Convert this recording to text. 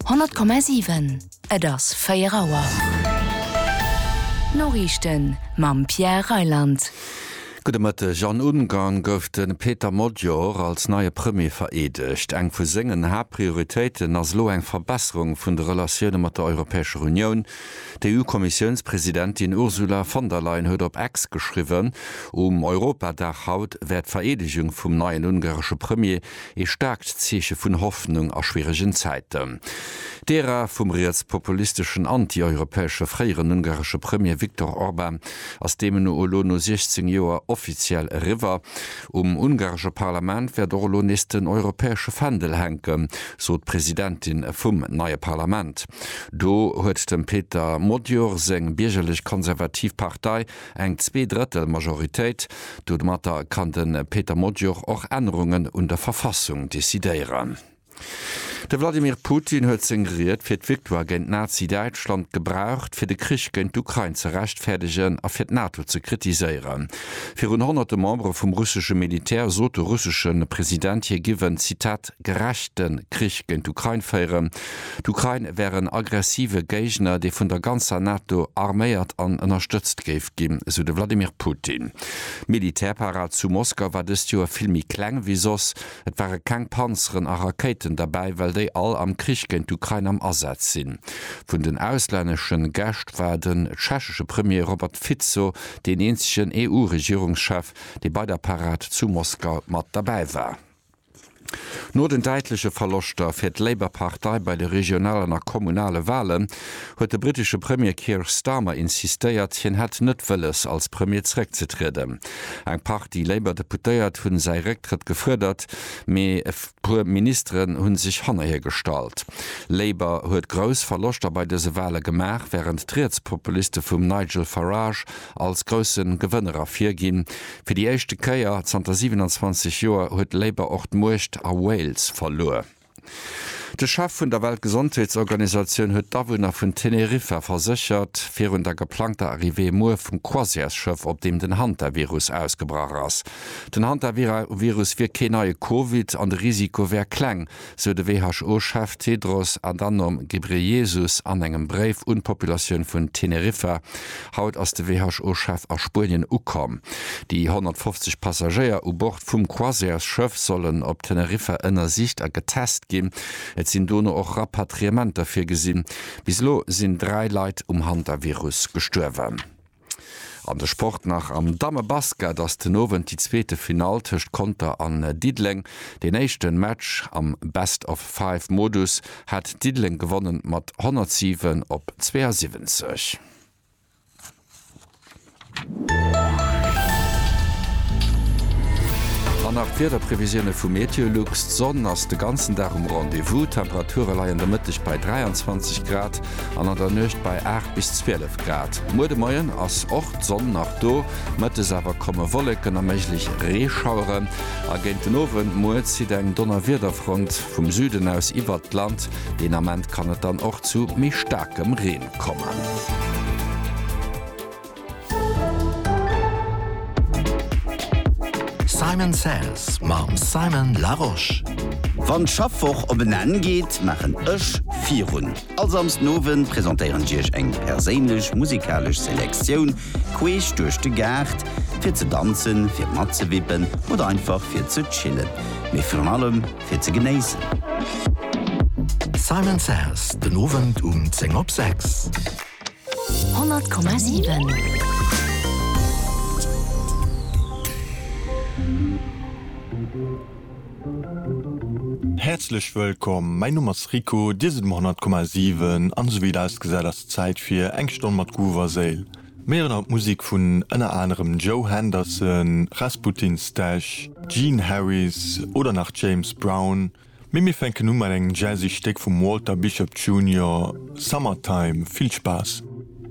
100,7, Et ass 4 Auer. D'Noriichten mam Pierre Reyland. Gudde Mëtteg. An Ungarn gouf de Péter Magyar als neie Premier vereedegt. Eng vu sengen Haaptprioritéiten ass elo eng Verbesserung vun de Relatioune mat der Europäescher Unioun. D'EU-Kommissiounspresidentin Ursula von der Leyen huet op X geschriwwen, um Europadag haut wäert d'Vereedegung vum neien ungaresche Premier Ee staarkt Zeeche vun Hoffnung a schwieregen Zäiten. D'Ära vum rietspopulisteschen, anti-europäesche fréieren ungaresche Premier Viktor Orban ass deemno elo no 16 Joer offiziell eriwwer. Um ungaresche Parlament wäert och elo nees den europäesche Fändel hänken, sot d'Presidentin vum neie Parlament. Do huet dem Peter Magyar seng biergerlech-konservativ Partei eng Zweedrëttel Majoritéit. Domatter kann de Peter Modior och Ännerungen un der Verfassung decidéieren. De Wladimir Putin huet seng Ried fir d'Victoire géint Nazi-Däitschland gebraucht, fir de Krich géint d'Ukrain ze rechtfäerdegen a fir d'NATO ze kritiséieren. Virun honnerte Membere vum russesche Militär sot de russesche President, hie giff en, Zitat, gerechte Krich géint d'Ukrain féieren. D'Ukrain wär en aggressive Géigner, dee vun der ganzer NATO arméiert an ënnerstëtzt géif ginn, esou de Wladimir Putin. D'Militärparad zu Moskau war dëst Joer vill méi kleng wéi soss. Et ware keng Panzeren a Rakéiten derbäi, well déi all am Krich géint d'Ukrain am Asaz sinn. Vun den auslännesche Gäscht war den tschechesche Premier Robert Fico deen eenzegen EU-Regierungschef, dee bei der Parad zu Moskau mat derbäi war. No den däitleche Verloschter fir d'Labour-Partei bei de regionalen a kommunale Walen, huet de brittesche Premier Keir Starmer insistéiert, hien hätt net wëlles, als Premier zeréckzetrieden. Eng Partie Labour-Deputéiert hu säi Récktrëtt gefuerdert, mee e puer Ministeren hu sech hanner hie gestallt. Labour huet grouss Verloschter bei dëse Wale gemaach, wärend d'Rietspopuliste vum Nigel Farage als grousse Gewënner ervirginn, Fir déi éischte Kéier zanter 27 Joer huet Labour och d'Muecht a Wales verluer. De Chef vun der Weltgesondheetsorganisatioun huet d'Awunner vun Teneriffa verséchert, virun der geplangter Arrivée muer vum Croisièresschëff, op deem den Hantavirus ausgebrach ass. Den Hantavirus wier kee neie Covid an de Risiko wär kleng, sou de WHO-Chef Tedros Adhanom Ghebreyesus an engem Bréif un d'Populatioun vun Teneriffa. Haut ass de WHO-Chef a Spuenien ukomm. Déi 150 Passagéier u Bord vum Croisièresschëff sollen op Teneriffa ënnersicht a getest ginn. Et sinn dono och Rapatriementer virgesinn. Bis elo sinn dräi Leit um Hantavirus gestuerwen. An de Sport nach, Am Dammebasket ass den Owend déi zweete Finall tëscht Conter an Diddeleng. Deen éischte Match am Best of Five Modus hat Diddeleng gewonnen mat 107 op 72. An nach d'Wiederprevisioune vu Meteolux, D'Sonn ass de ganzen Dag um Rendez-vous, Temperature leien de Mëtteg bei 23 Grad an an der Nuecht bei 8 bis 12. Grad. Muer de Moien ass och d'Sonn nach do, mëttes awer komme Wolleken a méiglech Reeschauere a géint den Owend muer zitt eng Donnerwiederfront vum Süden aus iwwert d'Land. Deen Ament kann et dann och zu méi staarkem Reen kommen. Simon Says mam Simon Larosche. Wann d'Schaffwoch op en Enn geet, maachen ech virun. All Samsdenowend presentéieren ech iech eng perséinlech musikalesch Selektioun queesch duerch de Gaart, fir ze danzen, fir matzewippen oder einfach fir ze chillen, mee virun allem fir ze genéissen. Simon Says, den Owend um 10 op 6. 100,7. Häerzlech wëllkomm, mäin Numm ass Rico, dir sidd um 100,7 an esou wéi et ausgesäit ass et Zäit fir eng Stonn mat Groove a Séil. Mir héieren haut Musik vun ënner anerem Joe Henderson, Rasputin Stash, Gene Harris oder nach James Brown, mee mir fänken u mat engem jazzy Stéck vum Walter Bishop Junior, Summertime. Vill Spaass!